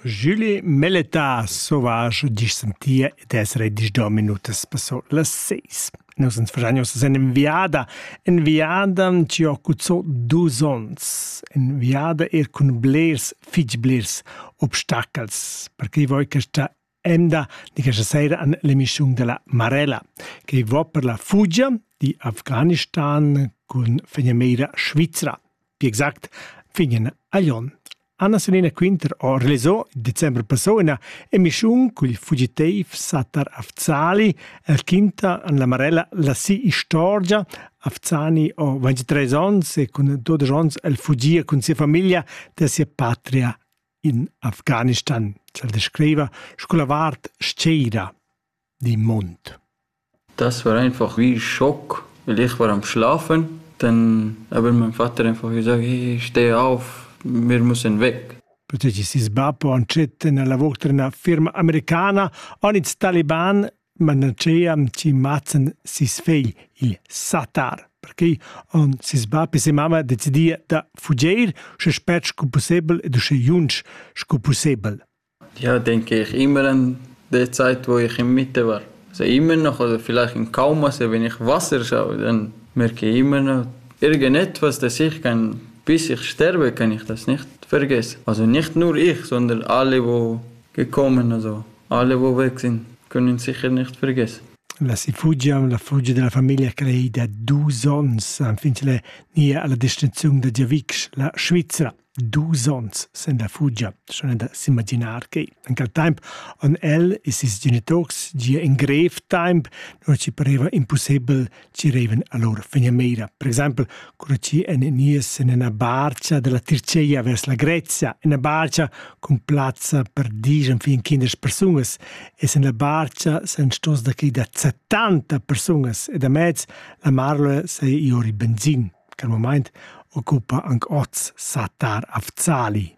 Julie Melleta Sauvage disch sentia ed es redisch do minutas passo las seis. Nus ans fagianius en enviada, enviada ci ho cuzzò dus ons, enviada er cun blers, fitg blers obstacels, perché voi questa Emda di questa sera an l'emissiun della Marella, che va per la fugia di Afghanistan cun fegnameira Svizra. Pi exact, fignen a Lyon. Anna Selina Quinter ho realizzo il decembre passò una emissiun cul fugiteif Satar Afzali, el quinta an la Marella la si istorgia. Afzani ho 23 ans e cun 12 ans el fugia cun sia famiglia da sia patria in Afghanistan, sa descriva sco la vart steira di Mond. Das war einfach wie Schock, weil ich war am Schlafen, dann aber mein Vater einfach gesagt, hey, steh auf, wir müssen weg. Protegi ses bab o ancet nella vostra firma americana, on its Taliban manageam chi mazzan sis fegl, il satar, perché on sis bap e se mamma decidia da fugeir sche spert sco possibel ed usche junsch sco possibel. Ja, denke ich immer an der Zeit, wo ich in Mitte war. Also immer noch, oder vielleicht in Kauma, also wenn ich Wasser schaue, dann merke ich immer noch, irgendetwas, das ich kann, bis ich sterbe, kann ich das nicht vergessen. Also nicht nur ich, sondern alle, die gekommen, also Alle vò vecin cun ün sicher nicht vergess. La Sifugia, la fugia da la famiglia creida dus ons, enfin ch'ella nia a la destinaziun da giavisch, la Svizra. Dus ons sen la fugia, schon da s'imaginar che in quel temp on el e ses genitors gia in grev temp, non ci pareva impossibel girevan a lur fegnameira, per exempel cura chi en nies en ina barcha dalla Tirceia vers la Grezia, ina barcha cun plazza per dis enfin kinderes persungas, e sen la barcha san stos da chi da 70 persungas e da mez la marloe sei iori benzin, che al moment occupa anc oz Satar Afzali.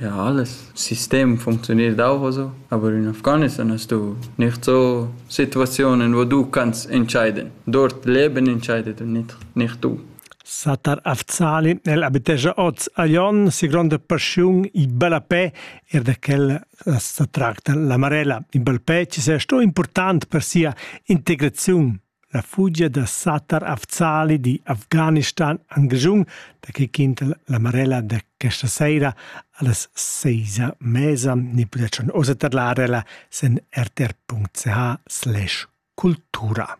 Ja, das System funktioniert auch so, aber in Afghanistan hast du nicht so Situationen, wo du kannst entscheiden. Dort Leben entscheidet und nicht, nicht du. Sa tar Afzali nel abitescia oz a Ion si gronda passiun i ballapè er da quel sa tracta la Marella. In ballpè ci sia sto important per sia integrazione. La fugia da Satar Afzali di Afghanistan en Grischun da che quinta la Marella da questa sera a las seis a mesa ni pudetschan ossa tadlar ella sen rtr.ch slash cultura.